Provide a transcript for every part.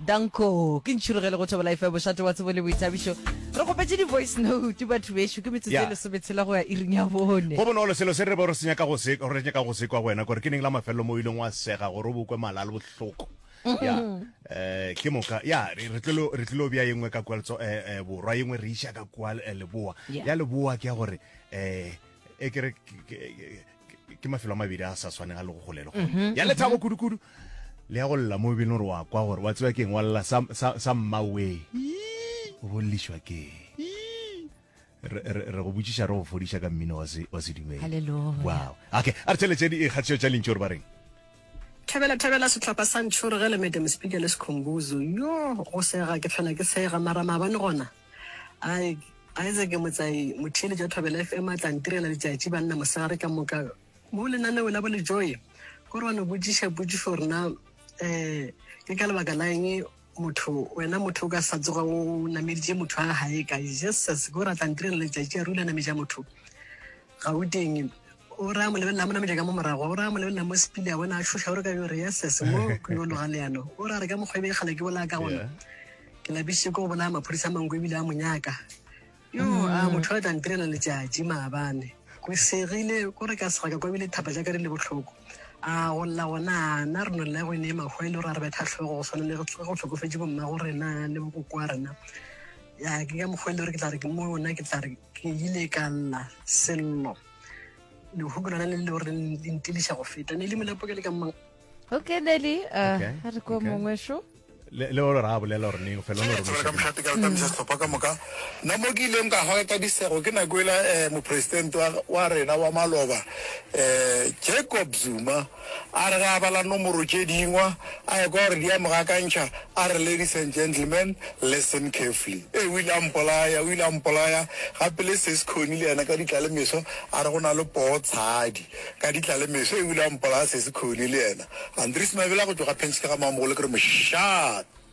Danko, ke ntšhurugele go Thobela FM, mošate wa tsebo le boithabišo. Re kgopetše di-voice note, batho bešo, ke metsotso e Yeah. lesometshela go ya iring ya bone. Go bonolo selo se re bo re se nyaka go se re nyaka go se kwa go wena gore ke neng la mafelelo mo o ileng wa sega gore o bo kwe mala a le bohloko ya eh ke moka ya re re tlilo re tlilo bya yengwe ka kwa letso eh eh, borwa yengwe re isha ka kwa eh, leboa Yeah. ya leboa ke ya gore eh e ke re ke- ke- ke mafelo a mabedi a sa swaneng a le go gole le gone ya lethabo kudukudu le ya go lla mo bene gore wa kwa gore wa tsewa keng wa lla sa- sa sa mmawe o bollišwa keng re re- re go botšiša re go fodiša ka mmino wa se- wa sedumedi Hallelujah. wow okay a re tšheletse di ikgatšeo tša lentši gore ba reng thabela thabela sehlapa sa ntšhore ge le madam speaker le sekhombuzo yo go sega ke tlhola ke sega mara maabane gona Ai, Isaac Motsai, motheeletši wa Thobela FM a tla ntirela letšatši banna mosegare ka moka mo lenaneo la bolejoe gore wa no botšiša potšišo rena um eh, ke ka lebaka la eng motho wena motho o ka sa tsoga o nameditše motho a gae ka jesus gore a tla ntirela letšatši a rule a nametša motho Gauteng. O re a mo lebelela mo nametša ka mo morago, o re a mo lebelela mo sepile a bona a šoša, o re ka yo re yeses mo ke yo loga leano. O re a re ka mokgwa e be kgale ke bolaya ka gona. Ke lapišitše ko go bolaya maphodisa a manko ebile a mo nyaka. Yo a mm. motho a tla ntirela letšatši maabane. Go segile ko re ka sega ka kwa ebile thapa ja ka di le bohloko a go lla gona na re nolela go e ne mahwa e le gore a re betha tlhogo go tshwana le go tlhokofetse bomma go rena le bokoko wa rena ya ke ka mokgwa e le gore ke tla re ke mo ona ke tla re Ke ile ka lla sello lehuku lona le leo re le ntiliša go feta ne le molapo ke le ka mmang okay neli uh, Okay, a re ko okay. mongwe šo le le olo ra bolela gore neng fela o ne o Tshola ka rometsa mokgate ka letamisa sehlopha ka moka nna mo ke ileng ka hwa ka kabisego ke nako ela um mopresidente wa- wa rena wa maloba um jacob zuma A re ge a bala nomoro tše dingwa, a ekwa gore di a mo gakantšha, a re, Ladies and gentlemen, listen carefully. Ee, o ile a mpolaya, o ile a mpolaya. Gape le Ses Connie le yena ka ditla le meso a re go na le poo tshadi. Ka ditla le meso, ee, o ile a mpolaya Sesi Connie le yena. Andries Mabela go tšwa ga Penskei ga Mamogolo ke re mošate.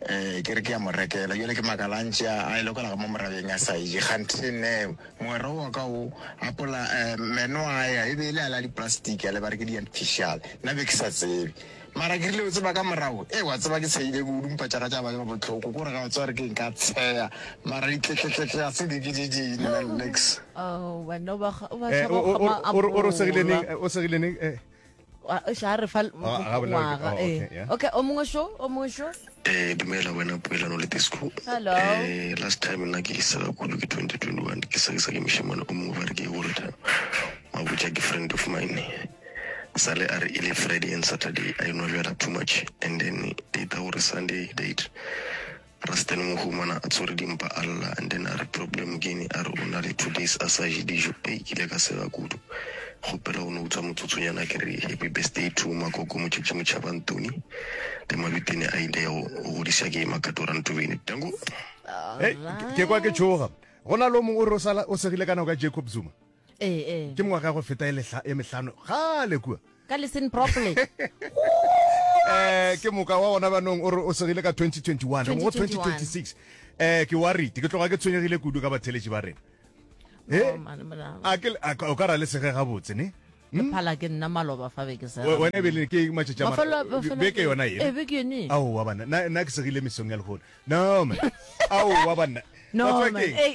Ee, ke re ke ya mo rekela. Bjale ke makalantše a a e lokela ga mo morabeng a sa eje. Kganthe nne, mogwera owa ka o apola um meno a ya, e be e le a la diplastic a le ba re ke di-artificial. Nna be ke sa tsebe. Mara ke rile o tseba ka morago, ee wa tseba ke tsheyile kudu mpa tša ka tša ba bohloko. Ke gore ga o tseba gore ke eng ka tsheya. Mara ditletletletle ga se di ke di ding nna nix. Oh, wena o ba kga- o ba Eh, tshaba o- o- kgama a o re- o re o segile neng? bola. Eh, o segile neng? Eh. xa re fa ngwaga okay o mongwe sho o mongwe sho eh dumela wena poelano le disco hello eh last time nna ke isa kudu ke 2021 ke sa ke sa ke mishimane o mongwe ba re ke gore tha mabutša ke friend of mine sale a re e le friday and saturday i know jala too much and then data gore sunday date Rasta le mohumana a tshwere dimpa a lla and then a re problem keng a re o na le two days a sa je dijo ei ke ile ka sega kudu kgopela o no utswa motsotsonyana ke re happy birthday to makoko motšetši motšhaba ntoni le mabitene a ile go godisa ke makatora ntobeni danko Hey, ke- ke kwa ke tšhoga go na le o mongwe o re o sala o segile ka nako ya jacob zuma ke mengwaga ya go feta e lehla- e mehlano gale kua Ka listen properly. eh ke moka wa gona banong o re o segile ka 2021 re mo go 2026 eh ke worried ke tloga ke tshwenyegile kudu ka batheletši ba rena Oh, Eh, mane molaho. a ke le- a ka- o ka ra le sege gabotse ne Le phala ke nna maloba fa be ke sa. We- wena e bele ke matšatši a Mafelo- mara- mafelo- beke yona Eh, ena beke yone. aowa banna na na ke segile mesong ya lehono no man aowa banna No, Ba tswa man. keng? Ei,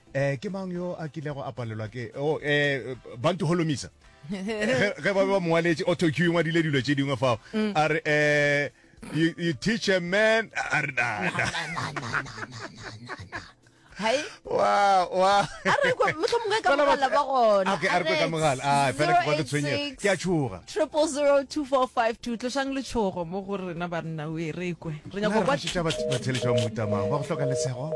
Eh, ke mang yo a kilego a palelwa ke oh, eh, bantu holomisa ge ba be ba mowaletše autoq e ngwadile dilo tše dingwe fao mm. a re um you, you teach a man a re ke a tshoga triple zero two four five two tlosang letshogo mo go rena banna o e rekwe re nyako ba theletša ba motamang ba go hloka lesego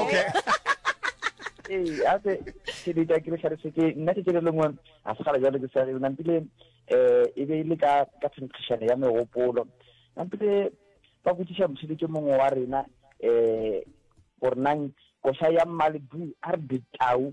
okay ee a se ke be ke re tlhalose ke nna ke kere lengwe a se gala jalo ke sa re nampile eh e be ile ka ka tshentishane ya megopolo nampile ba botsisa mosidi ke mongwe wa rena eh gore nang kosa ya mmalbu a re ditau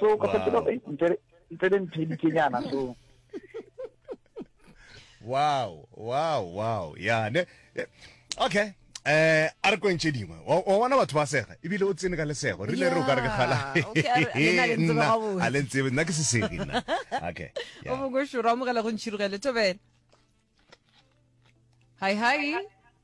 so ka fetela eh, ntle ntle le nthedikenyana so wow wow wow ya ne eh, okay eh a re kwentše dingwe wa bona batho ba sega ebile o tsene ka lesego rile re o ka re ke gala a le ntsebe nna ke sesegi nna okay o mongwe šoro amogela go ntšhirogele tobele hi hi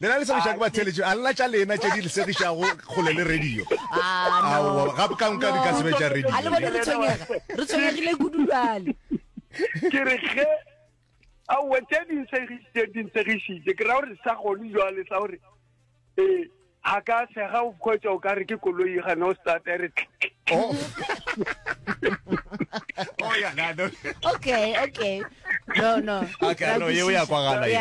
Lena le segišwa ke batheeletši, a lena tša lena tše di le segišago kgole le radio? Ah, no. Aowa, gape ka nka di ka se be tša radio. A le bone re tshwenyega, re tshwenyegile kudu bjale. Ke re ge aowa tše di ntshegišitše di ntshegišitše ke ra gore sa gone jwale sa gore ee ga ka sega o kgwetsa o ka re ke koloi gane o starta re Oh. oh ya, na no. Okay, okay. no no okay no yeo ya kwagala ye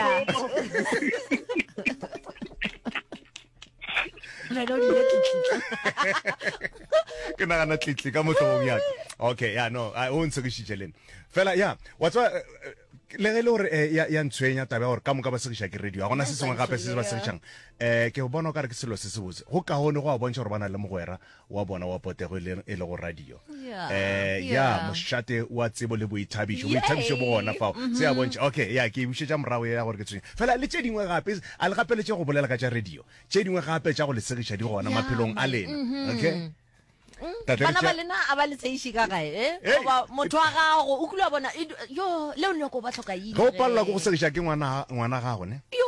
ke nagana tlitli ka motlhogong ya okay ya no o ntshekišitše lene fela ya wa tswa eh, eh, le ge e le gore eh, ya ntshwenya taba ya gore ka moka ba segiša ke radio ga gona se sengwe gape se se ba segišang um ke bona o ka re ke selo se se botse go kaone go a bontšha gore ba na le mogwera wa bona wa potego e leng e le go radio yeah, eh ya yeah. mošate wa tsebo le boithabišo boithabišo bo gona fao mm -hmm. se ya bontšha okay ya ke bušetša morago ya gore ke tshwenye fela le tše dingwe gape a le gapeletše go bolela ka tša radio tše dingwe gape tša go le segiša di gona yeah, maphelong a lena mm -hmm. okay bana ba lena a ba le tseiši ka gae eh? goba motho wa gago o kula bona yo le o nyako ba tlhoka eng go palela go go segiša ke ngwana ngwana gago ne yo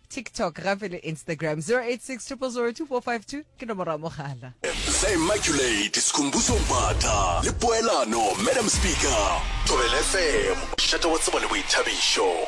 TikTok, gape le Instagram. 0860024522 ke nomoro ya mogala. The Immaculate, Skhumbuzo Mbatha le Poelano, Madam Speaker. Thobela FM, mošate wa tsebo le boithabišo.